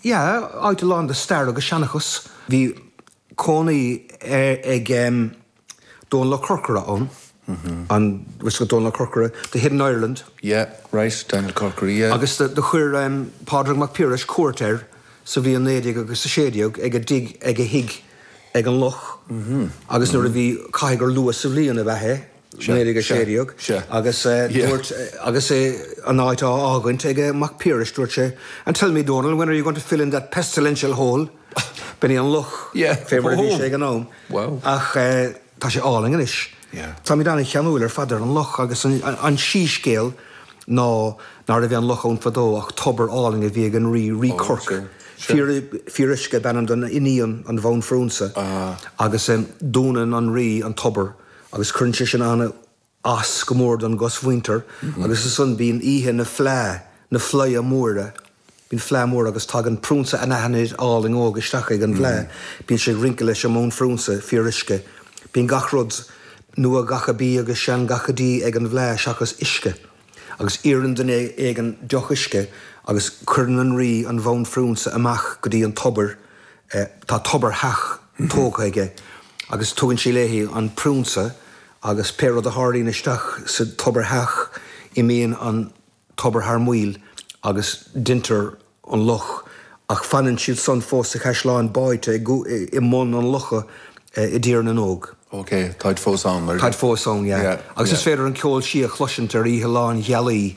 Yeah, áit lán de stair agus seanchas. Bhí cónaí ag Dónall Ó Corcora ann, an bhfuil Dónall Ó Corcora, The Hidden Ireland. Yeah, right, Daniel Corkery, yeah. Agus do thug Pádraig Mac Piarais cuairt air sa bhliain naoi déag agus a sé déag ag a dtigh ag a thigh ag an loch agus nuair a bhí, caithfidh gur luath sa bhliain ab ea é, Léirigh 16 agus dúirt, agus é an áit á fhágaint ag Mac Piarais, dúirt sé, And tell me, Dónall, when are you going to fill in that pestilential hole? B'in é an loch, fé mar a bhí sé ag an am. Ach tá sé álainn anois. Táimid an-cheanúil ar fad ar an loch agus an síscéal ná nárbh é an loch ann fadó ach tobar álainn a bhí ag an rí, Rí Corc. Fíor, Fíoruisce ab ainm don iníon, an bhanphrionsa, agus dúnann an rí an tobar. agus cuireann sé sin an-as go mór don gcosmhuintir agus ansan bíonn oíche na fleá, na fleidhe móire, bíonn fleá mór agus tagann priúnsa anaithnid álainn óg isteach ag an bhfleá, bíonn sé ag rince leis an mbanphriúnsa Fíoruisce, bíonn gach rud nua gacha bídh agus sean gacha dí ag an bhfleá seachas uisce. agus iarrann duine éigin deoch uisce agus cuireann an Rí an bhanphrionsa amach go dtí an tobar, tá tobartheach tógtha aige, agus tugann sí léi an prionsa agus pé rud a tharlaíonn isteach sa tobartheach imíonn an tobar thar maoil agus deintear an loch, ach fanann siad san fós sa chaisleán báidhte i mbun an locha i dTír na nÓg. OK, táid fós ann, mar. Táid fós ann, yeah. Agus is féidir an ceol sí a chloisint ar oíche lánghealaí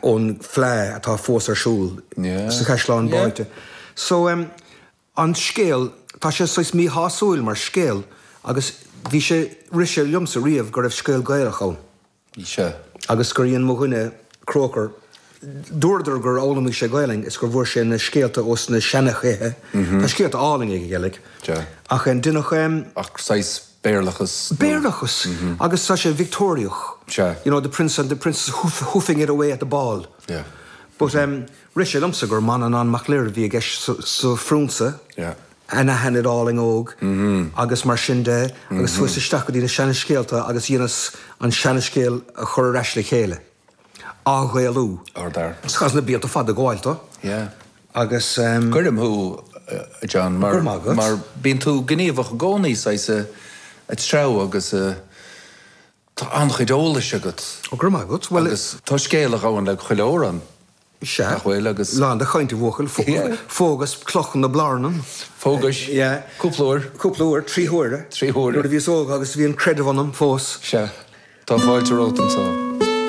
ón fleá atá fós ar siúl sa chaisleán báidhte. So, an scéal, tá sé saghas míshásúil mar scéal agus bhí sé, rith sé liomsa riamh go raibh scéal Gaelach ann. Mise. agus gur dhein mo dhuine, Croker, dúradar gur fhoghlaimigh sé Gaelainn is gur bhfuair sé na scéalta ó sna seanchaithe, tá scéalta álainn aige, Gaelach, ach deineadh saghas Béarlachas. Béarlachas, agus tá sé Victeoiriach, you know, the Prince and the Princess hoofing it away at the ball. But rith sé liomsa gur Manannán Mac Lir a bhí i gceist sa Phriúnsa. Yeah. anaithnid álainn óg agus mar sin de agus chuas isteach go dtí na seanscéalta agus dheineas an seanscéal a chur ar ais le chéile, á Ghaelú. Ardfhear. Chaitheas na blianta fada ag gabháil dó agus. Tuigim thú, a John, mar mar bíonn tú gníomhach i gcónaí saghas ag, ag treabhadh agus tá an-chuid eolais agat. Ó, go raibh maith agat. Bhuel, is. Tá scéal a ghabhann le chuile fhoireann. Is ea. Nach bhfuil agus. Lán de chaint a bhuachaill. Yeah. Phógas Cloch na Blarnan. Phógais. Yeah. Cúpla uair. Cúpla uair. Trí huaire. Trí huaire. Nuair a bhíos óg agus bhí an creideamh ionam fós. Is ea. Tá fáilte romhat anseo.